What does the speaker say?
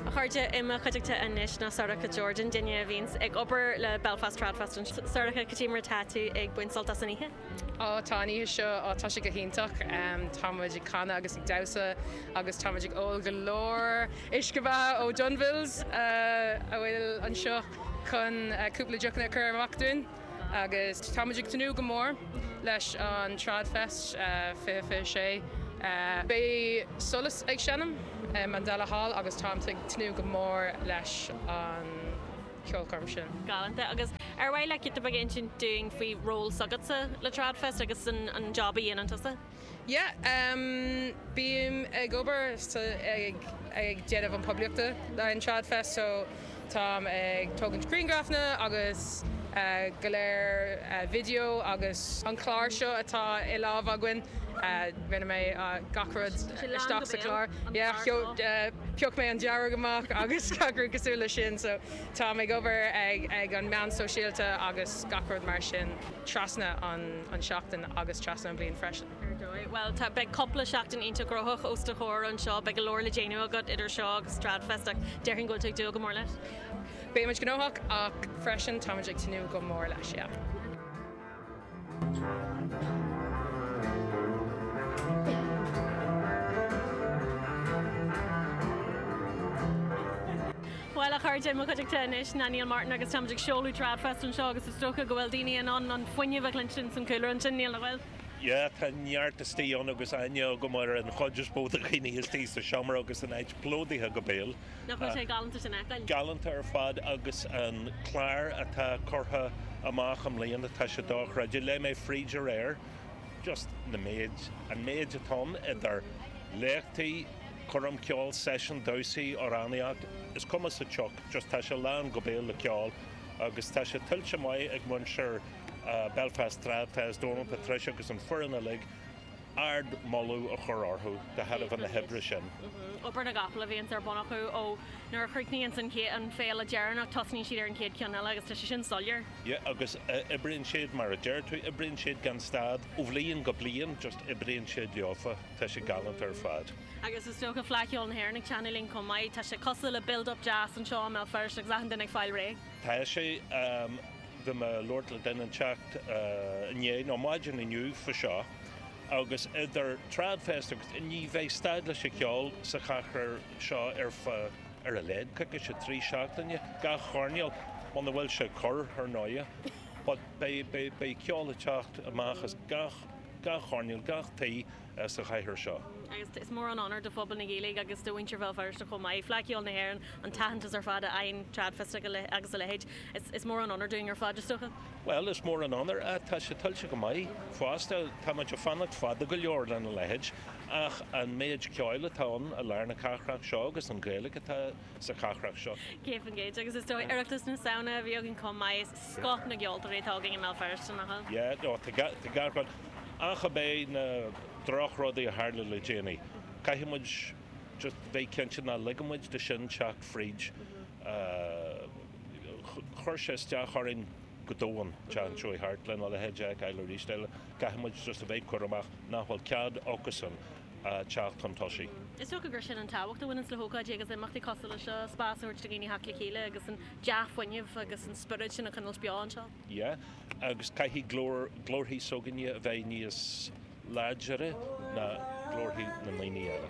A chairde, i mo chuideachta anois ná Sorcha Jordan, duine a bhíonns ag obair le Belfast Tradfest anseo. Sorcha, cad é mar atá tú ag baint sult as an oíche? Ó, tá an oíche seo, ó tá sé go hiontach. Tá muid ag canadh agus ag damhsa agus tá muid ag ól go leor uisce beatha ó Dunville's a bhfuil anseo chun cúpla deochanna a chur amach dúinn. agus tá muid ag tnúth go mór leis an TradFest 2026. Beidh Solas ag seinm i Mandela Hall agus táimid ag tnúth go mór leis an cheolchoirm sin. Galanta. Agus ar mhaith leat cúpla rud a insint dúinn faoi ról s'agatsa le TradFest agus an jab a dhéanann tusa? Yeah, bím ag obair sa, ag, ag déanamh an poiblíocht le an Trad Fest so táim ag tógaint griangrafanna agus go leor video agus an clár seo atá i lámh againn rinne mé gach rud isteach sa clár. Yeah, phioc mé an dearg amach agus gach rud cosúil le sin so táim ag obair ag, ag an meán sóisialta agus gach rud mar sin trasna an, an seachtain. agus trasna an bhliain freisin. Ar dóigh. Bhuel, tá, beidh cúpla seachtain iontach gnóthach os do chomhair anseo, beidh go leor le déanamh agat idir seo agus Tradfest ach déarfainn go bhfuil tú ag dúil go mór leis. Beidh muid gnóthach ach freisin tá muid ag tnúth go mór leis, yeah. Bhuel, a chairde, in mo chuideachta anois ná Neil Martin agus táimid ag seoladh TradFest anseo agus is dócha go bhfuil daoine in ann an fuinneamh a chluinstin san cúlra ansin, Neil, nach bhfuil? Yeah, tá neart istigh ann agus aithne agam ar an chuid is mó de dhaoine istigh sa seomra agus an áit plódaithe go béal. Nach bhfuil sé galánta é sin a fheiceáil? Galánta ar fad agus an clár atá curtha amach i mbliana, tá sé dochreidte. Léigh mé fríd aréir, just an méid, an méid atá ann idir léachtaí, Coirm cheoil, seisiúin, damhsaí, amhránaíocht, is cuma sa tsioc, just tá sé lán go béal le ceol agus tá sé tuillte maith ag muintir Belfast Trad Fest, Dónal, Patricia agus an foireann uilig, ardmholadh a chur orthu de thairbhe na hoibre sin. Obair na gcapall a bhíonns ar bun acu ó nuair a chríochnaíonns an féile deireanach tosnaíonn siad ar an chéad cheann eile agus tá sé sin soiléir. Yeah agus oibríonn siad mar a deir tú, oibríonn siad gan stad, ó bhliain go bliain, just oibríonn siad leofa. Tá sé galánta ar fad. Agus is dócha Fleadh Cheoil na hÉireann ag teannadh linn chomh maith. Tá sé cosúil le build up deas anseo i mBéal Feirste agus achan duine ag fáil réidh. Tá sé. Bhí mé ag labhairt le duine inteacht inné, nó maidin inniu faoi seo, agus idir Tradfest agus an Fhleadh, ní bheidh stad leis an cheol sa chathair seo ar feadh, ar a laghad, coicís nó trí seachtaine, gach coirnéal, muna bhfuil sé ag cur, ar ndóighe. But beidh ceol ag teacht amach as gach. gach coirnéal, gach taobh den chathair seo. Agus is mór an onóir do phobal na Gaeilge agus do mhuintir Bhéal Feirste chomh maith, Fleadh Cheoil na hÉireann, an t-aitheantas ar fad a fhaigheann TradFest agus a leithéid. Is mór an onóir dúinn ar fad, is dócha. Bhuel, is mór an onóir ach tá sé tuillte go maith fosta. Tá muid ag fanacht fada go leor lena leithéid ach an méid ceoil atá ann i lár na cathrach seo agus an Ghaeilge atá. sa chathrach seo. 100% agus is dóigh Oireachtas na Samhna a bhí againn chomh maith, is scoth na gceoltóirí atá againn i mBéal Feirste, nach bhfuil? Yeah, no, tá gach rud, ach ab é na droch rudaí a tharla le déanaí, caithfidh muid just bheith cinnte ná ligfidh muid do sin teacht fríd, chuir sé isteach orainn go domhain, d'ainneoin tart lena leithéid a fheiceáil arís eile, caithfidh muid just a bheith cúramach nach bhfuil cead acusan, teacht chun tosaigh. Is dócha gur sin an tábhacht a bhaineann le hócáidí agus imeachtaí cosúil le seo, spás a thabhairt do dhaoine theacht le chéile agus an dea-fuinneamh agus an spiorad sin a choinnilt beo anseo. Yeah agus caithfidh glór, glórthaí s'againne a bheith níos láidire ná glórthaí na ndaoine eile.